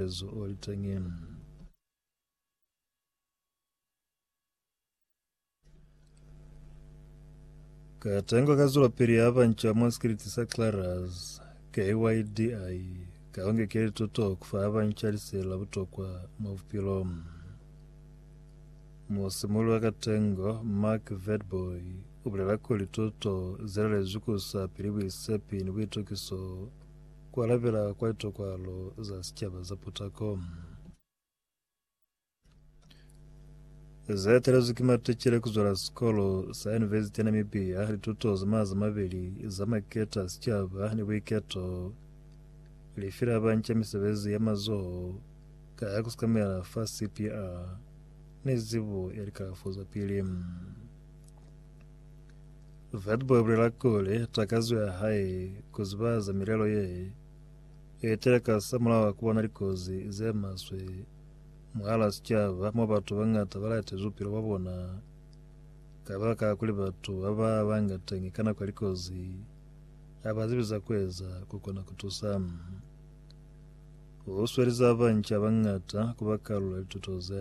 Jesu o li teñi. Katengo ka zwelapili ya banca mwa sikiliti sa Clarus, KYDI, ka ongekeli tuto ku fa banca liseli la butokwa mwa bupilo. Musimuli wa katengo, Mark Vedboy, u bulela kuli tuto ze lalezwi ku sa pili buisepi ni buitokiso Ku alabela kwa litokwalo za sicaba za putako. Ze talezwi ki maticele ku zwela sikolo sa Yunivesiti ya Namibia, lituto za maza mabeli za maketa a sicaba ni buiketo, lifi la banca misebezi ya mazoho ka ya ku sikamela fa CPR ni zibo ya likalafo za pili. Vati ba bulela kuli takazo ya hae ku ziba za milelo ye i etela ka sa mulao ku bona likozi ze maswe mwahala sicaba mo batu ba ngata ba lahetezi bupilo bwa bona ka baka la kuli batu ba ba banga teñi ka nako ya likozi ha ba zibi za ku eza ku kona ku tusa. U sweli za banca ba ngata ku ba karolo ya lituto ze.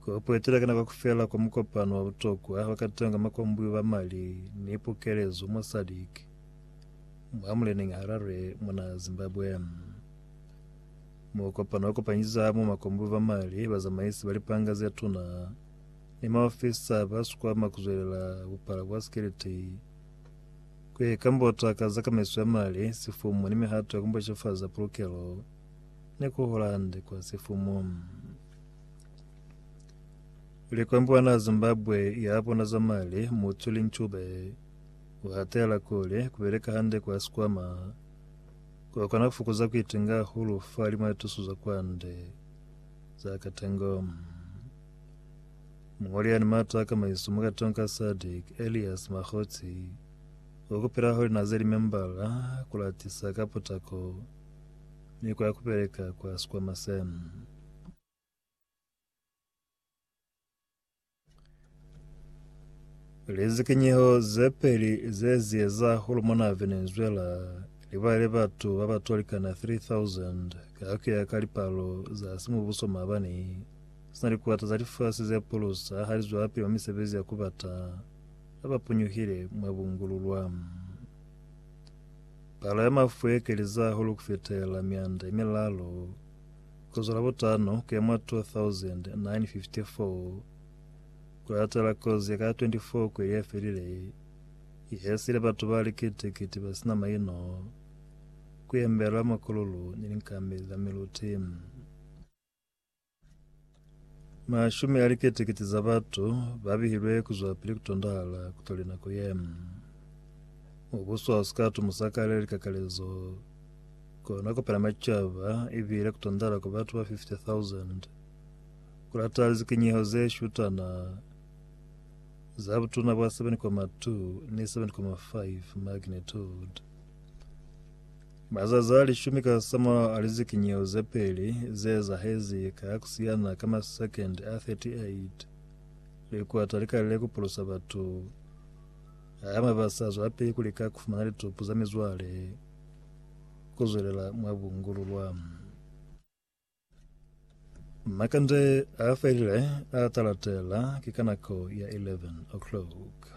Ku ipwetela ka nako kaufela kwa mukopano wa butokwa wa kateho nga makombwi ba mali ni pukelezo mwa SADC mwa muleneñi Harare mwa naha ya Zimbabwe. Mukopano wa kopanyisa hamo makombwi ba mali, bazamaisi ba lipanga ze tuna ni maofisa ba sikwama ku zwelela bupala bwa sikiliti, ku ye kambota ka za kamaiso ya mali, sifumu ni mihato ya ku mbocefaza pulukelo ni ku hola hande kwa sifumu. Likombwana Zimbabwe ya bona za mali Mutsuli Ncube u hatela kuli ku beleka hande kwa sikwama ku kona ku fokuza ku itinga hahulu fa limo ya tuso za kwande za katengo. Mungoli yani mato a kamaiso mu katong ka SADC Elias Makgotsi u kupela holi na ze limembala ku latisa ka potako ni kwa ku beleka kwa sikwama sena. Lizikinyeho ze peli ze ziyeza hulumona Venezuela libale batu ba ba tolikana 3000 ka kuya ka lipalo za simubuso maabani sina likuata za lifasi ze pulusa ha li zwapili mwa misebezi ya kubata ba ba punyuhile mwa bungululwa. Palo ya mafu ye keliza hulu kufitela mianda ye milalo Ku zwa Labutano ku ya mwa 2954, ku latela kozi ya ka 24 kweli ye felile i hesile batu ba likiti-kiti ba si na maino ku yembela makululu ni linkambi za miluti. Mashumi a likete-kete za batu ba bihilwe ku zwa pili ku tondahala ku toli nako ye. Mubuso ha u si ka tumusa ka lya likakalezo, kona ku pela macaba i bile ku tondahala kwa batu ba 50,000 ku lata lizikinyeho ze shutana za butuna bwa 7.2 ni 7.5 magnitude. Mazazi a lishumi ka za mulaho a lizikinyeho ze peli ze ezahezi ka ku siyana ka masekendi a 38, likwata li kalile ku pulusa batu hama ba sa zwelapili ku lika ku fumana litupu za mizwale ku zwelela mwa bungululwa. Makande a felile a talatela ki ka nako ya 11:00.